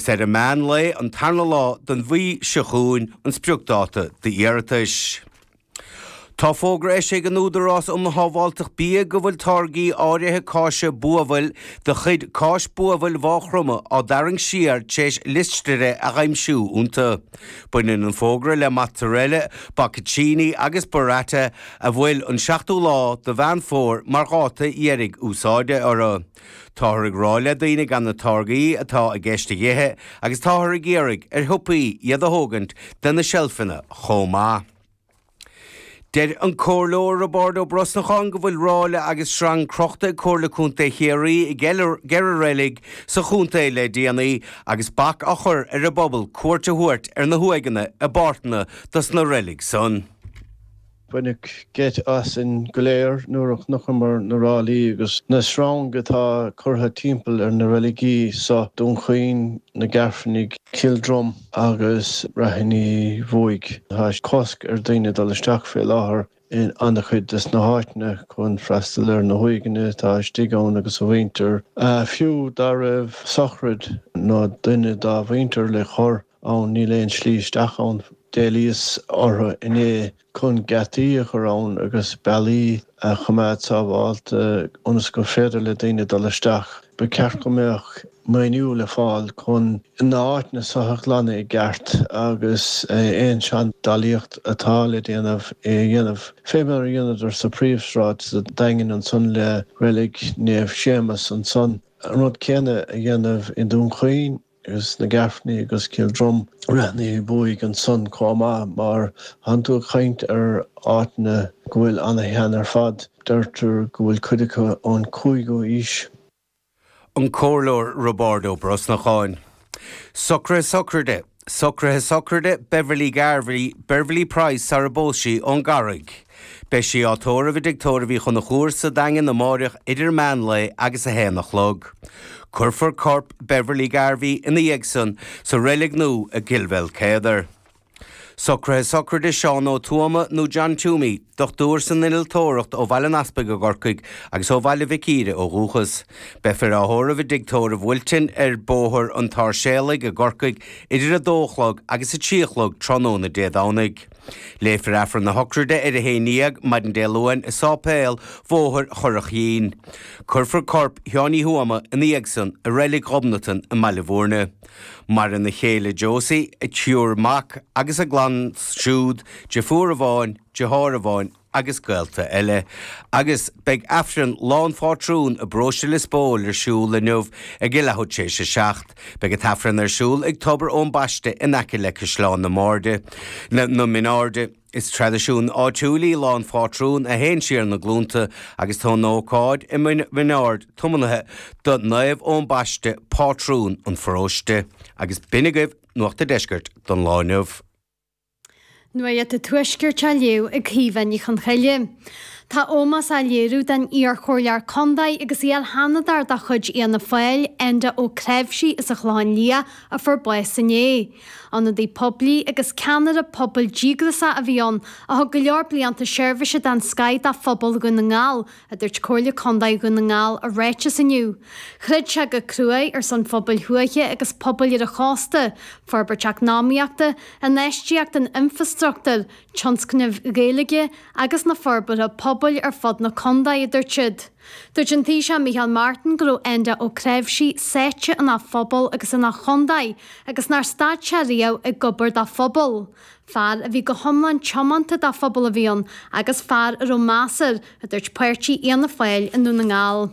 Is ar an meán lae an tarna lá den mhí seo chugainn an spriocdáta d'iarratais. Tá fógra eisithe ag an Údarás um Shábháilteacht Bia go bhfuil táirgí áirithe cáise buabhaill de chuid Cáis Buabhaill Mhaigh Chromtha á dtarraingt siar tréis listéire a aimsiú iontu. Baineann an fógra le Mozzarella, Bocconcini agus Burrata a bhfuil an 7ú lá de Mheán Fómhair mar dháta deiridh úsáide orthu. Táthar ag rá le daoine gan na táirgí atá i gceist a dh'ithe agus táthar ag iarraidh ar shiopaí iad a thógaint de na seilfeanna chomh maith. Deir an Comhairleoir Roibeárd Ó Brosnacháin go bhfuil ráille agus sreang crochta ag Comhairle Contae Chiarraí i gceithre reilig sa chontae le déanaí agus bac á chur ar an bpobal cuairt a thabhairt ar na huaigheanna i bpáirteanna dos na reilig san. Baineadh geit asainn go léir nuair a chonacamair na ráillí agus na sreang atá curtha timpeall ar na reiligí so, Dún Chaoin, na Gairfeanaigh, Cill Drom agus Ráithín Uí Bhuaigh. Tá cosc ar daoine dul isteach fé láthair in an-chuid de sna háiteanna chun freastal ar na huaigheanna atá istigh ann agus a mhuintir, fiú dá raibh sochraid nó duine dá mhuintir le cur ann, níl aon slí isteach ann. D'éilíos orthu inné chun geataí a chur ann agus bealaí a choimeád sábhálta ionas gur féidir le daoine dul isteach. Ba cheart go mbeadh maoiniú le fáil chun na háiteanna so a ghlanadh i gceart agus aon seandálaíocht atá le déanamh a dhéanamh, fé mar a dheineamair sa phríomhsráid sa Daingean ansan le Reilig Naomh Séamas ansan, an rud céanna a dhéanamh i nDún Chaoin. agus na Gairfeanaigh agus Cill Drom. Ráithín Uí Bhuaigh ansan chomh maith mar tánn tú ag caint ar áiteanna go bhfuil ana-shean ar fad, deirtear go bhfuil cuid acu ón 5ú aois. An Comhairleoir Roibeárd Ó Brosnacháin. Socruithe Sochraide Socruithe Sochraide Beverley Garvey Beverley Price sarar phós sí ón gCarraig. Beidh sí á tórramh i dTigh Tórraimh Uí Chonchúir sa Daingean amáireach idir meán lae agus a haon a chlog. Cuirfear corp Beverly Garvey ina dhiaidh san sa reilig nua i gCill Maoilchéadair. Socruithe sochraide Seán Ó Tuama nó John Twomey, dochtúir san innealtóireacht ó Bhaile an Easpaig i gCorcaigh agus ó Bhaile Mhic Íre ó dhúchas. Beifear á thórramh i dTigh Tórraimh Wilton ar Bhóthar an tSáirséalaigh i gCorcaigh idir a dó a chlog agus a trí a chlog tráthnóna Dé Domhnaigh. Léifear Aifreann na sochraide ar a haon dhéag maidin Dé Luain i Sáipéal Bhóthar Churraichín. Cuirfear corp Sheáin Uí Thuama ina dhiaidh san i Reilig Ghobnatan i mBaile Mhúirne. Maireann a chéile Josie, a triúr mac agus a gclann siúd, deirfiúr amháin, deartháir amháin, agus gaolta eile, agus beidh Aifreann lá an Phátrúin i bparóiste Lios Póil ar siúl inniu ag a leathuair tréis a seacht. Beidh an tAifreann ar siúl ag Tobar Eoin Baiste in aice le Caisleán na mBairde, Na Mine Airde. Is traidisiún áitiúil í Lá an Phátrúin a théann siar na glúnta agus tá an ócáid i Min Aird tiomnaithe do Naomh Eoin Baiste, Pátrún an Pharóiste. Agus b'in agaibh Nuacht an Deiscirt don lá inniu. Nuacht an Tuaiscirt á léamh ag Caoimhe Ní Chonchoille. Tá ómós á léiriú don iarchomhairleoir contae agus iarSheanadóir de chuid Fhianna Fáil, Enda Ó Cnáimhsí as an Chlochán Liath a fuair bás inné. Ionadaí poiblí agus ceannaire pobail díograiseach a bhí ann a thug go leor blianta seirbhíse den scoith do phobal Dhún na nGall, a dúirt Comhairle Contae Dhún na nGall i ráiteas inniu. Throid sé go cruaidh ar son phobail thuaithe agus pobail ar an chósta, forbairt eacnamaíochta, infheistíocht in infreastruchtúr, tionscnaimh Ghaeilge agus na forbartha pobail ar fud na contae, a dúirt siad. Dúirt an Taoiseach Micheál Martin go raibh Enda Ó Cnáimhsí sáite ina phobal agus ina chontae agus nár stad sé riamh ag obair dá phobal. Fear a bhí go hiomlán tiomanta dá phobal a bhí ann agus fear a raibh meas air, a dúirt páirtí Fhianna Fáil i nDún na nGall.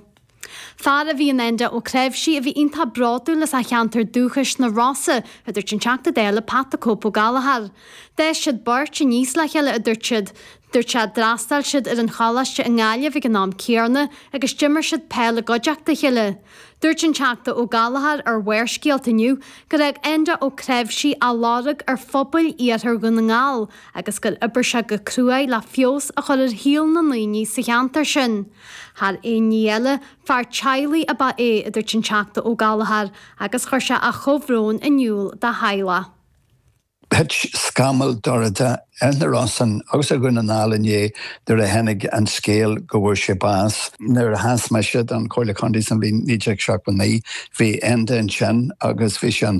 Fear a bhí in Enda Ó Cnáimhsí a bhí iontach bródúil as a cheantar dúchais, na Rosa, a dúirt an Teachta Dála Pat the Cope Ó Gallchóir. D'fhás siad beirt aníos le chéile, a dúirt siad. Dúirt sé, D'fhreastail siad ar an choláiste i nGaillimh ag an am céarna agus d'imir siad peil i gcuideachta a chéile. Dúirt an Teachta Ó Gallchóir ar Bharrscéalta inniu gur fhág Enda Ó Cnáimhsí a lorg ar phobail iarthar Dhún na nGall agus gur oibir sé go cruaidh le feabhas a chur ar shaol na ndaoine sa cheantar sin. Thar aon ní eile, fear teaghlaigh ab ea é, a dúirt an Teachta Ó Gallchóir agus chuir sé a chomhbhrón in iúl dá theaghlach. Thit scamall dorcha ar na Rosann agus ar Dhún na nGall inné nuair a tháinig an scéal go bhfuair sé bás. Nuair a sheas mise don Chomhairle Contae sa bhliain 1979, bhí Enda ansin agus bhí sé an.